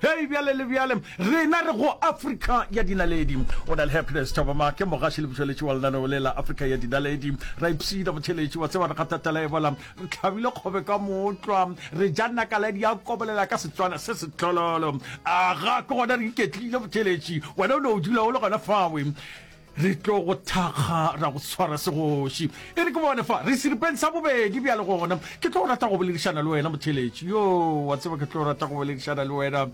Hei, bjale le bjale, rena re go Afrika ya Dinaledi. O na le Happiness Thabama, ke mogaši le motšweletši wa lenaneo le la Afrika ya Dinaledi. Ra ipshina motheletši, wa tseba re kgatha tala ya ebola, re tlhabile kgobe ka mootlwa, re ja nakaladi ya kobolela ka Setswana se setlololo. Aga, ke gona re iketlile motheletši, wena o no o dula o le gona fawe. Re tlo go thakga ra go tshwara segoši. E re ke bone fa, re seripeng sa bobedi bjale gona. Ke tlo rata go boledišana le wena, motheletši. Yo, wa tseba ke tlo rata go boledišana le wena.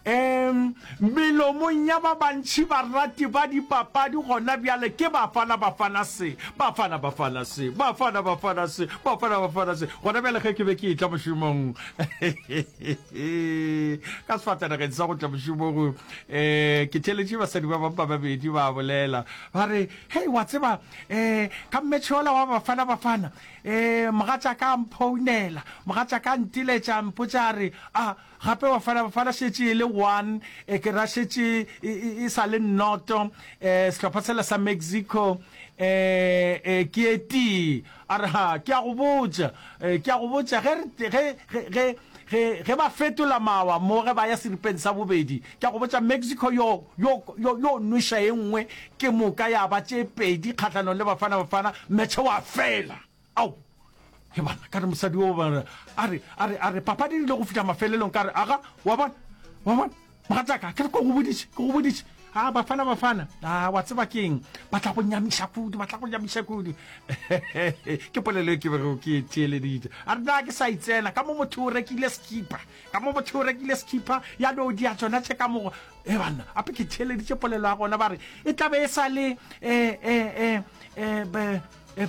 Um, melomong ya ba bantši barati ba dipapadi gona bjale ke Bafana Bafana se, Bafana Bafana se, Bafana Bafana se, Bafana Bafana se. Gona bjale ge ke be ke etla mošomong, ka sefatanageng sa go tla mošomong, um ke theletše basadi ba bampa babedi ba bolela ba re hei wa tseba um ka mmetšhola wa bafana bafana um mogatša ka mphounela mogatša ka ntiletša mpotša re a gape bafana bafana šetše e le one e ke ra šetše e sa le nnoto um sehlopha sela sa mexico um ke etee A re, Ha, ke a go botša, ke a go botša, ge re, ge, ge, ge, ge, ge ba fetola mawa mo ge ba ya seripeng sa bobedi, ke a go botša, Mexico yo, yo, yo, yo nweša e nngwe ke moka ya ba tše pedi kgahlanong le Bafana Bafana, metšhe wa fela. Ao! He bana, ka re mosadi wo, a re, a re, a re, papadi e rile go fihla mafelelong, ka re, Aga, wa bona? Wa bona? Mogatšaka, ke re ko go bodiše, ke go bodiše. A Bafana, Bafana, a wa tseba ke eng? Ba tla go nyamiša kudu, ba tla go nyamiša kudu. Ke polelo e ke bego ke e theeleditše. A re na ke sa itsena, ka mo motho o rekile sekipa, ka mo motho o rekile sekipa, ya no dia tsona tše ka mogo. E banna, ape ke theeleditše polelo ya gona, ba re e tla be e sa le, eh, eh, eh, eh, be,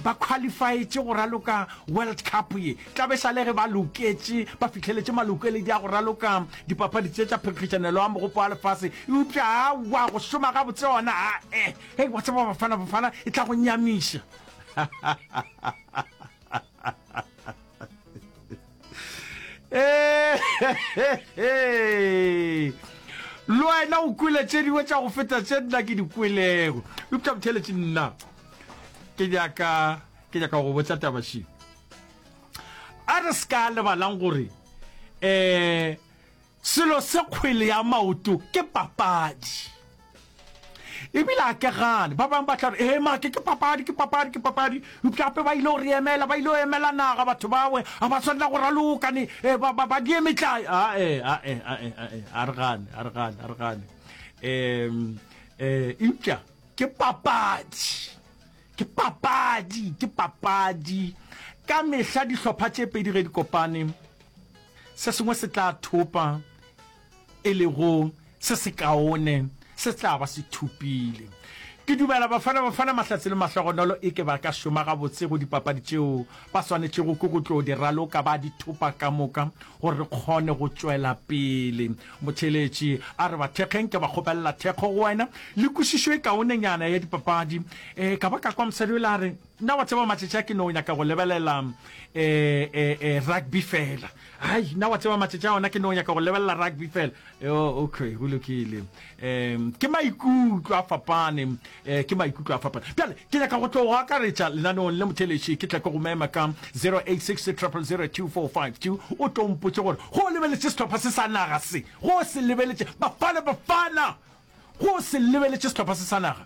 ba khwalifaetše go raloka World Cup ye, tla be sale ge ba loketše ba fihleletše malokeledi a go raloka dipapadi tše tša phenkgišanelo ya Mogopo wa Lefase. Eupša aowa, go šoma gabotse gona, aa, hei, wa tseba, Bafana Bafana e tla go nyamiša. le wena o kwele tše dingwe tša go feta tše nna ke di kwelego eupša botheletše nna ke nyaka ke nyaka go botsa tabašing a re se ka lebalang gore um Selo se kgwele ya maoto ke papadi. Ebile a ke gane ba bang ba tla re ee make ke papadi ke papadi ke papadi mpšape ba ile go re emela ba ile go emela naga batho bawe a ba tshwanela go raloka ne eh, ba ba die metlai a e a e a e a e a re gane a re gane a re gane em eh impša ke papadi ke papadi ke papadi ka mehla dihlopha tše pedi ge di kopane Se sengwe se tla thopa, e lego se sekaone, se tla ba se thopile. Ke dumela Bafana Bafana Mahlatse le Mahlogonolo e ke ba ka šoma gabotse go dipapadi tšeo, ba swanetšego ke go tlo di raloka ba di thopa ka moka gore re kgone go tšwela pele. Motheeletši a re, Bathekgeng ke ba kgopelela thekgo go wena le kwešišo e kaonenyana ya dipapadi. E ka ba ka kwa mosadi o ile a re, Nna wa tseba matšatši a ke no nyaka go lebelela rugby fela. Hai, nna wa tseba matšatši a ona ke no nyaka go lebelela rugby fela. Yo, okay, go lokile. Um, ke maikutlo a fapane, um, ke maikutlo a fapane. Bjale, ke nyaka go tlo go akaretša lenaneong le motheletši, ke tle ke go mema ka 0860000242, o tlo mpotše gore go o lebeletše sehlopha se sa naga se, go o se lebeletše, Bafana, Bafana! Go o se lebeletše sehlopha se sa naga.